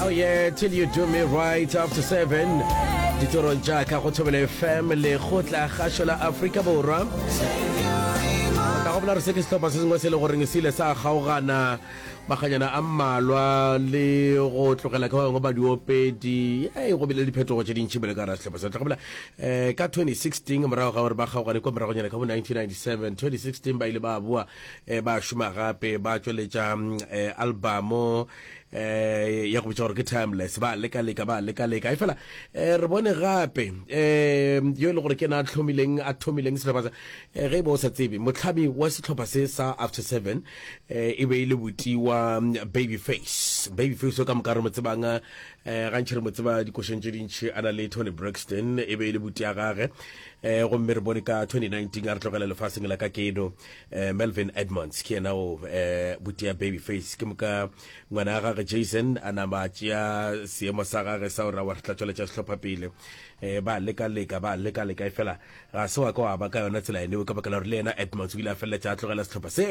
Oh yeah, till you do me right after seven ditorong tša ka go thobele fm le go tla gašo la aforika borwa ka go bola re se ke sehlopha se sengwe se le goreng se ile sa kgaogana maganyana a mmalwa le go tlogela ka bangwe badiopedi e go bile diphetogo tše dintšhi bele ka ra sehlopha sa tla go bola um ka 2016 morago ga gore ba kgaogane kwa moragonyana ka bo 1997 2016 ba ile ba boa um ba šoma gape ba tšweletša um albamo eh ya go bitsa gore ke timeless ba leka leka ba leka leka e fela eh re bone gape eh yo e le gore ke na tlhomileng a thomileng setlhopha sa eh ge e bo sa tsebe motlhami wa setlhopha se sa after 7 eh e be e le botiwa mm, baby face baby face o ka moka re mo tsebang eh gantšhi re mo tseba dikošeng tše dintšhi a na le tony braxton e be e le buti ya gage eh gomme re bone ka 2019 a re tlogela lefaseng la ka keno eh, melvin edmonds ke yena o eh, butia baby face ke moka ngwana ga gage jason a nama tšea seemo sa gage sa gore wa re tla tsweletša sehlopha pele eh, ba leka leka ba leka leka e fela ga se wa ka wa ba ka yona tsela ene o ka bakela gore le yena edmonds o ile a feleletša a tlogela sehlopha se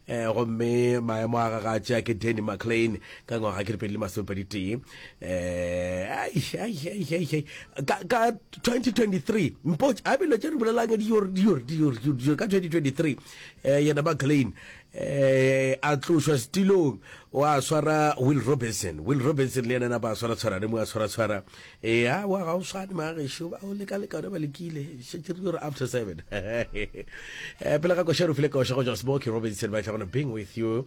eh, gomme maemo a gage a tšea ke danny mclean ka ngwaga ke dipedi le masomepedi tee eh ai ai ai ai ai ka ka 2023 mpo a bile tšere bolelang di yor di yor di yor di yor ka 2023 eh yena ba Klein eh a tlošwa stilong wa swara Will Robinson Will Robinson le yena ba swara swara le mo a swara swara eh a wa ga o swane ma ge sho ba o leka leka ba lekile se tšere yor after 7 eh pele ga koshero file koshego just smoke Robinson ba tla gona being with you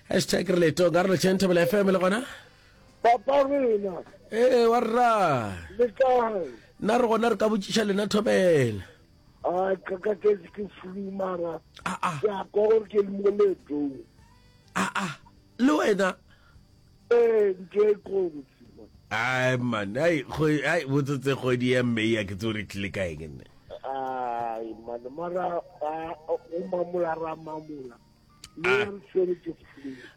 hashtag re letong ka re letšeng thobela fm le gona papa rena ee wa rra le kae nna re gona re ka botšiša lena thobela a ka ka ke ke flu mara Ah, ah. ke a kwa gore ke le mo letong aa Ah, le wena ee ntho e kotsi man. ai man ai kgo- ai botsetse kgwedi ya mmei a ke tse o re tlile kae ke nne ai mane mara a- o mamola ra mamola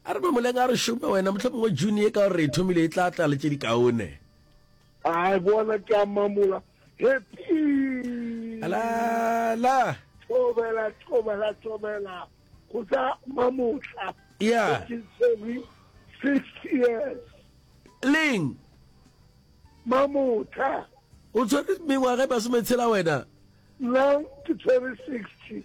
a re mamoleng a re šome wena motlho mongwe june e ka gore e thomile e tla tla le tse di kaone a bona ke a mamola alala thobela thobela thobela go tsa mamotla ya six years leng mamotla o tshwere mengwaga e masometshela wena nna ke tshwere sixty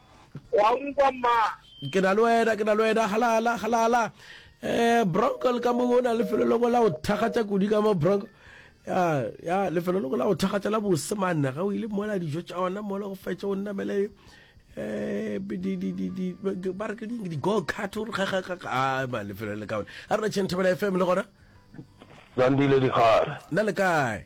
wa nkwa mma ke na le wena ke na le wena halala halala eh bronco le ka mongwe o na lefelo loko la go thakgatša kudu ka mo bronco ya ya lefelo loko la go thakgatša la bose manne ga o ile mola dijo tša ona mola go fetše o nnamele eh di di di di ba re ke ding di go kart o re ga ga ga a ba lefelo le ka ona a rena tšhenthabela fm le gona zandile dikgare na le kae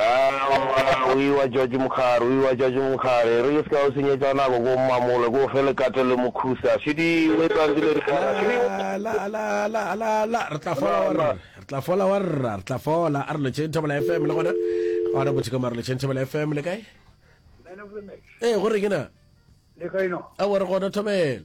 Aowa, o iwa George Mokgare, o iwa George Mokgare. E re le se ka o senyetša nako ko mmamole, ko o fe lekato le mokhusa. Šidi, o etsa ntse le rikara. Šidi, o. Ala, ala, ala, ala, ala, re tla fola wa rra, re tla fola wa rra, re tla fola. A re lotšheng Thobela FM le gona. A re botšheko mare lotšheng Thobela FM le kae? Ee, go reng na? Le kae no? Aowa, re gona Thobela.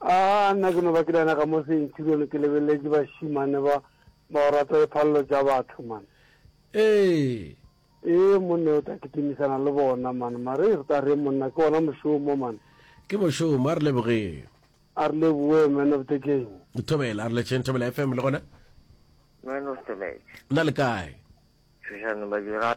A nna ke no ba ke lena ka mo seinthilone ke lebeleletše bašimane ba ba o rata diphalelo tša batho, man. Ee. Ee, monne o tla kitimisana le bona, man. Mare re tla reng, monna? Ke wona mošomo, man. Ke mošomo. A re lebogeng. A re leboge, Man of the Game. Thobela, a re letšeng, Thobela FM le gona. Man of the Match. Na le kae? Tšhošane ba dira.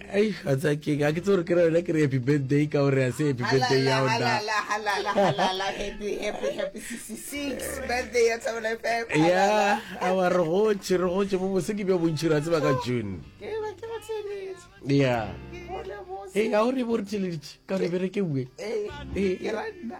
Ei, wa tsa keng? Ha ke tse gore ke ra yona ke re happy birthday ka gore ha se happy birthday ya ona. Halala, halala, halala, happy, happy, happy 66 birthday ya Thabo FM. Ya, a wa re gotše, re gotše bo bose ke bja bontši ra tseba ka June. Ke ba ke ba theleditše. Ya. Hole bose. Ei, ha o re bo re theleditše ka gore e berekeuwe. Ee, Ee. ke ra nna.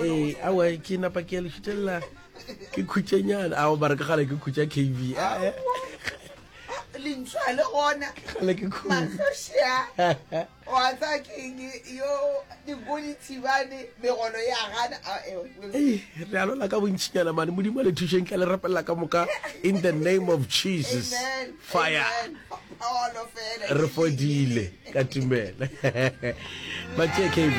ee awa ke napa ke ya lešutelela ke khutšenyana ao bare ka gale ke khutša kv lentshwa le gona matlhošea wa tsa keng yo digoli thibane megolo ya gana re alola ka bontšhinyana mane modimo le thušeng tla le rapelela ka moka in the name of jesus fire Re fodile ka tumelo. Ba tšee KB.